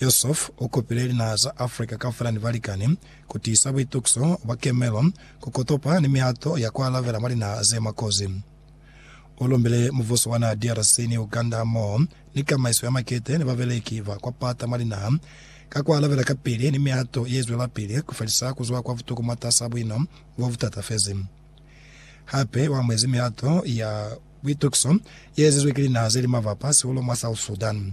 Yusuf u kopile linaha za Africa kaufela ni balikani ku tiisa buitukiso bwa kemelo, ku kotopa ni mihato ya ku alabela mwa linaha ze mwa kozi. U lumbile mubuso wa naha DRC ni Uganda hamoho ni kamaiso ya makete ni babeleki ba kwa pata mwa linaha ka ku alabela kapili ni mihato ye zwelapili ku felisa ku zwa kwa butuku mwatas'a buino bo bu tatafezi. Hape u amuhezi mihato ya buitukiso ye ezizwe ki linaha ze li mabapa sihulu mwa South Sudan.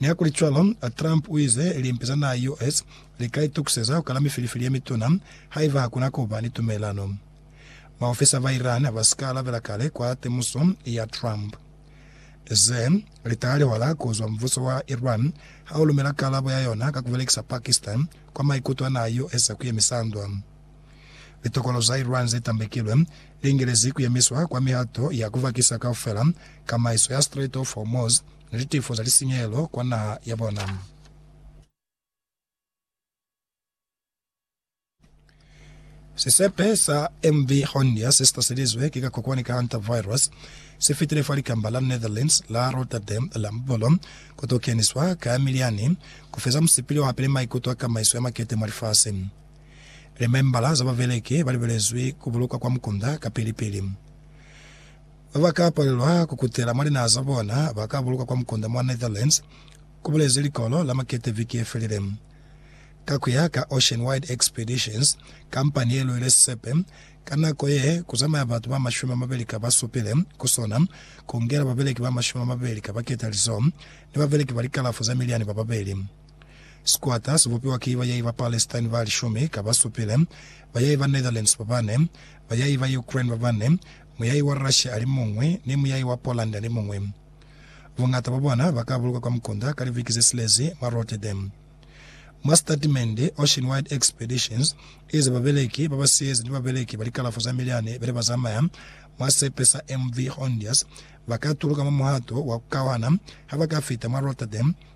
Nihakulicwalo, Trump uize limpi za naha ya US lika itukiseza kukala mifilifili yemituna haiba hakuna kuba ni tumelelano baofisa ba Iran basika alabela kale kwa temuso ya Trump. Ze litaha lihwala kuzwa mubuso wa Iran haulumela kalabo ya yona ka kubelekisa Pakistan kwa maikuto a naha ya US a kuyemisa ndwa. Litokolo za Iran ze tambekilwe li ingelezi ku yemiswa kwa mihato ya ku vakisa kaufela kamaiso ya Strait of Hormuz ni litifo za lisinyehelo kwa naha ya bona. Sisepe sa MV Hondia se si taselizwe ki kakokwani ka hantavirus si fitile fa likamba la Netherlands la Rotterdam la Mubolo ku t'o keniswa ka ya milyani ku feza musipili o hapile maikuto a kamaiso ya makete mwa lifasi. Limembala za babeleki ba libelezwi ku bulukwa kwa mukunda kapili-pili. Ba ba ka palelwa ku kutela mwa linaha za bona ba ka bulukwa kwa mukunda mwa Netherlands, ku bulezi Likolo la Makete viki ye felile. Ka ku ya ka Ocean Wide Expeditions, kampani ye luile sisepe ka nako ye ku zamaya batu ba mashumi a mabeli ka ba supile ku sona, ku ngela babeleki ba mashumi a mabeli ka ba ketalizo ni babeleki ba likalafo ze miliani ba babeli. Sikwata sibupiwa ki bayai ba Palestine ba lishumi ka basupile, bayai ba Netherlands ba bane, bayai ba Ukraine ba bane, muyai wa Russia alimuñwi, ni muyai wa Poland alimuñwi. Buñata bwa bona ba ka bulukwa kwa mukunda ka liviki ze silezi mwa Rotterdam. Mwa sitatimende, Ocean Wide Expeditions i ze babeleki ba ba siyezi ni babeleki ba likalafo za milyani bene ba zamaya mwa sepe sa MV Hondius ba ka tuluka mwa muhato wa ku kauhana ha ba ka fita mwa Rotterdam,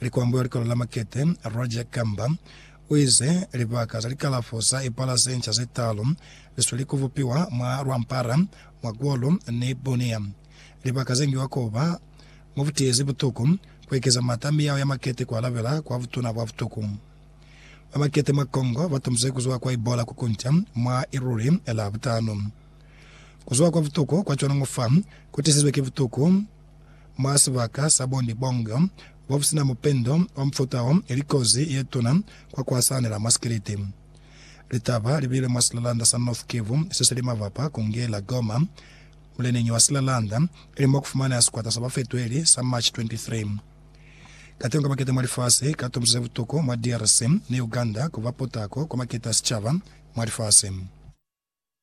Likwambo ya Likolo la Makete, Roger Kamba, u ize, Libaka za likalafo za ipala ze nca ze talu li sweli ku bupiwa mwa Rwampara, mwa Golo ni Bunia. Libaka ze ngiwa ku ba mwa butiizi butuku, ku ekeza m'ata a miyao ya makete ku alabela kwa butuna bwa butuku. Ba makete mwa Congo ba tumbuze ku zwa kwa Ebola ku kunca mwa Iruri la butano. Ku zwa kwa butuku kwa cwana ngo fa ku tisizwe ki butuku Mwa sibaka sa bo Nibongo, bo sina mupendo wa mufuta wo, ili kozi ye tuna kwa ku asahanela mwa sikiliti. Litaba li bile mwa silalanda sa North Kivu se sili mabapa ku nge la Goma, muleneñi wa silalanda, ili mo ku fumaneha sikwata sa bafetweli sa March 23. Kateho ka maketa mwa lifasi ka tumbusise butuku mwa DRC ni Uganda ku ba potako kwa maketa a sicaba mwa lifasi.